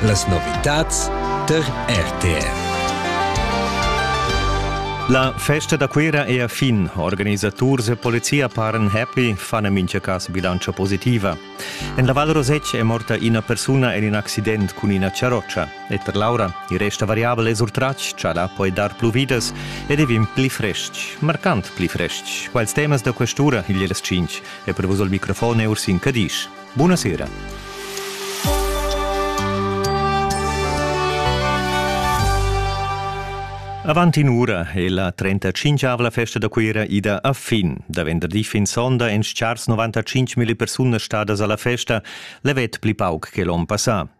Las novitads tar RTR. La festa da Cuira è a fin. Organisaturs e polizia paran happy, fan en mintga cas bilantscha positiva. En la Val Rosec è morta ina persuna en in accident cun ina charrotscha. E per Laura, il resta variabel e surtratg, chala poi dar plu vidas ed è vin pli frestg, marcant pli frestg. Quals temas da questura, il 5, è prevus al microfon e Ursin Cadisch. Buna sera. Avant in ura è la 35-avla festa da Cuira ida a fin. Da venderdi fin sonda èn stars 95 000 persunas stadas alla festa, levet pli pauc che l'onn passà.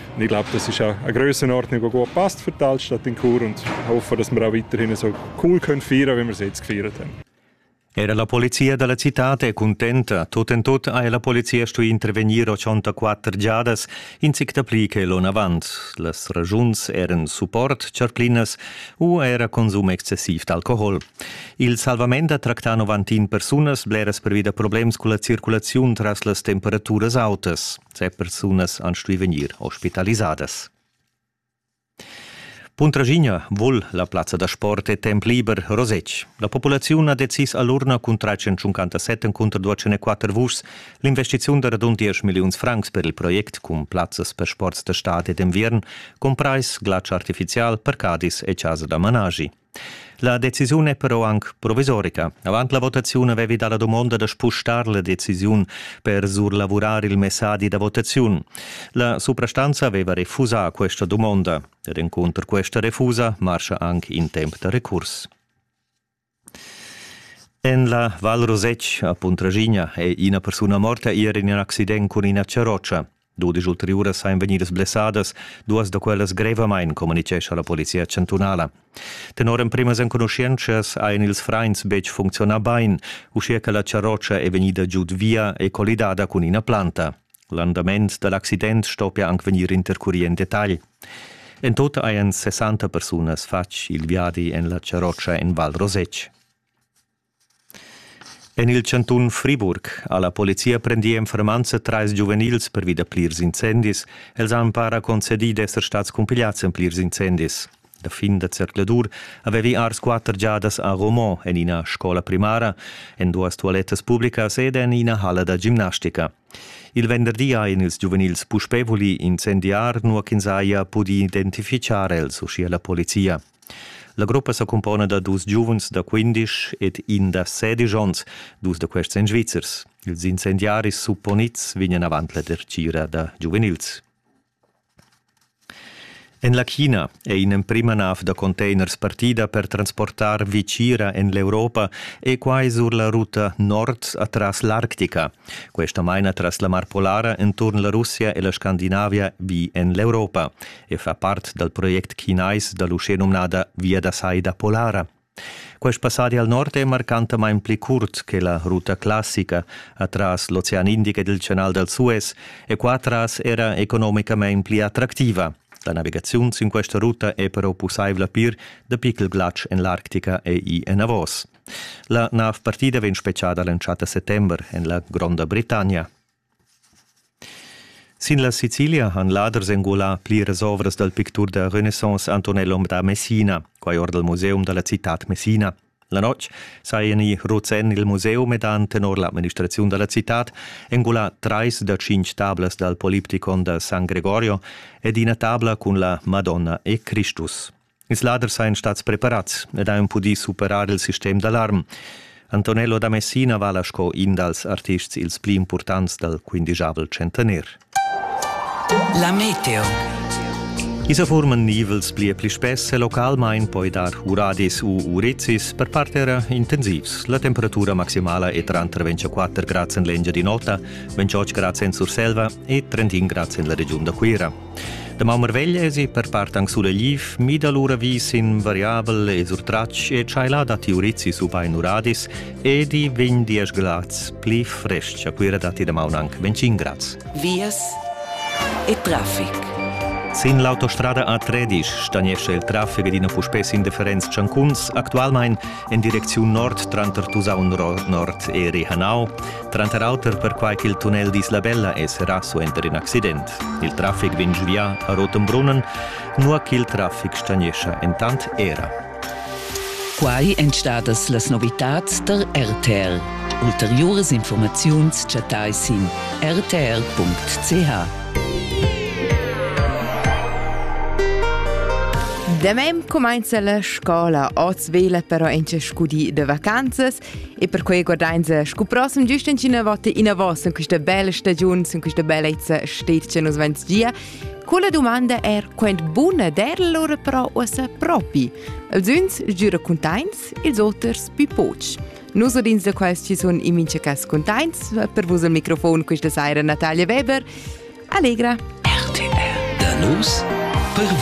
Und ich glaube, das ist auch eine Grössenordnung, die gut passt für die Altstadt in Chur und hoffen, dass wir auch weiterhin so cool können feiern können, wie wir es jetzt gefeiert haben. Era la polizia dalla città è contenta. Tot en tot ha la polizia stuì intervenir 84 giadas, in sic dapli che l'onavant. Las ragiuns eran support, charclinas u era consum excessiv d'alcohol. Il salvament ha tractà 91 persunas bleras pervi da problems con la circolazione tras las temperaturas autas. Tge persunas han stuì vegnir ospitalisadas. Puntraschigna vul la plazza da sport e temp liber Rosec. La populaziun ha decis a l'urna cun 357 encunter 204 vuschs l'investiziun da radund 10 milliuns francs per il project cun plazzas per sports da stad e d'enviern, comprais glatsch artifizial, parcadis e chasa da managi. La decisiun è però anc provisorica. Avant la votaziun avevi dà la dumonda da spustar la decisiun per surlavurar il messadi da votaziun. La suprastanza aveva refusà questa dumonda. Ed encunter questa refusa marscha anc in temp da recurs. En la Val Rosec a Puntragigna è ina persuna morta ier in accident cun ina charrotscha. Dudisch ulteriuras ein vegnidas blessadas, duas da quellas grevamain, communitgescha la polizia chantunala. Tenor emprimas enconuschientschas ein ils frains betg funzionà bain, uschia che la charrotscha è vegnida giud via e collidada cun ina planta. L'andament da l'accident stoppia anc vegnir intercurì en detagl. En tut hajan 60 persunas fatg il viadi en la charrotscha en Val Rosetg. En il chantun Friburg ha la polizia prendì en fermanza trais giuvenils pervi da plirs incendis. Els han para concedì d'esser stads cumpigliads en plirs incendis. Da fin da zercladur avevi ars quatter giadas a Romont en ina scola primara, en duas tualettas publicas ed en ina halla da gimnastica. Il venderdi ha en ils giuvenils puspè vulì incendiar, nua ch'ins haja pudì identifichar els, uschia la polizia. La gruppa sa cumpona da dus giuvens da 15 ed in da 16 onns, dus da questi en Svizzers. Ils incendiaris supponids vegnan avant la dertgira da giuvenils. En la China è in'emprima nav da containers partida per transportar Vicira en l'Europa e quai sur la ruta nord atras l'Arctica. Questa maina tras la Mar Polara enturn la Russia e la Scandinavia vi en l'Europa. e fa part dal project chinais da l'uschenumnada Via da sai da Polara. Quest passadi al nord è marcantamain pli curt che la ruta classica atras l'Ocean Indic ed il Canal dal Suez e qua tras era economicamain pli attractiva. La navigaziun sin questa ruta è però pussaivla pir dapi ch'il glatsch en l'Arctica è ì enavos. La nav partida vegn spetgada l'entschatta settember en la Gronda Britannia. Sin la Sicilia han laders engulà pliras ovras dal pictur da Renaissance Antonellum da Messina, quai or dal museum da la citad Messina. La notg sajan i ruts en il museum ed han tenor l'administraziun da la citad engulà trais da tschintg tablas dal Poliptikon da San Gregorio ed ina tabla cun la Madonna e Cristus. Ils laders sajan stats preparats ed han pudì superar il sistem d'alarm. Antonello da Messina vala sco in dals artists ils pli impurtants dal quindigiavel centener. La meteo. I sa forman nivels pli e pli spess e localmain poi dar uradis u urizis, per part era intensivs. La temperatura maximala è tranter 24 grads en l'Engiadin'Ota, 28 grads en Surselva e 31 grads en la regiun da Cuira. Damaun marvegl esi per part anc sulegliv, mida lura vi sin variabel e surtratg e tschaila datti urizis ubain uradis ed i vegn diesch glads pli frestg a Cuira datti damaun anc 25 grads. Vias e traffic. Sin l'autostrada A13 stagnescha il traffic ed ina puspè sin differents tschancuns, actualmain en direcziun nord tranter Tusaun-Nord e Rihanau. tranter auter perquai ch'il tunnel d'Islabella è serrà suenter in accident. Il traffic vegn giuvià a Rotenbrunnen, nua ch'il traffic stagnescha entant era. Quai èn stadas las novitads tar RTL. Ulteriuras informaziuns chattais sin rtl.ch. Da mem cumainza la scola oz vela però in scudi de vacanzas E perquei guardainsa scu prossem giust in cina vota inavos in questa bella stagiun, in questa bellezza stet che nos vents gia. Quella domanda è quant buna der lora però uossa propi. Els uns giura contains, ils oters più poch. Nus odins da quels ci sun in mincha cas contains, per vus al microfon questa saira Natalia Weber. Allegra! RTR, da nus per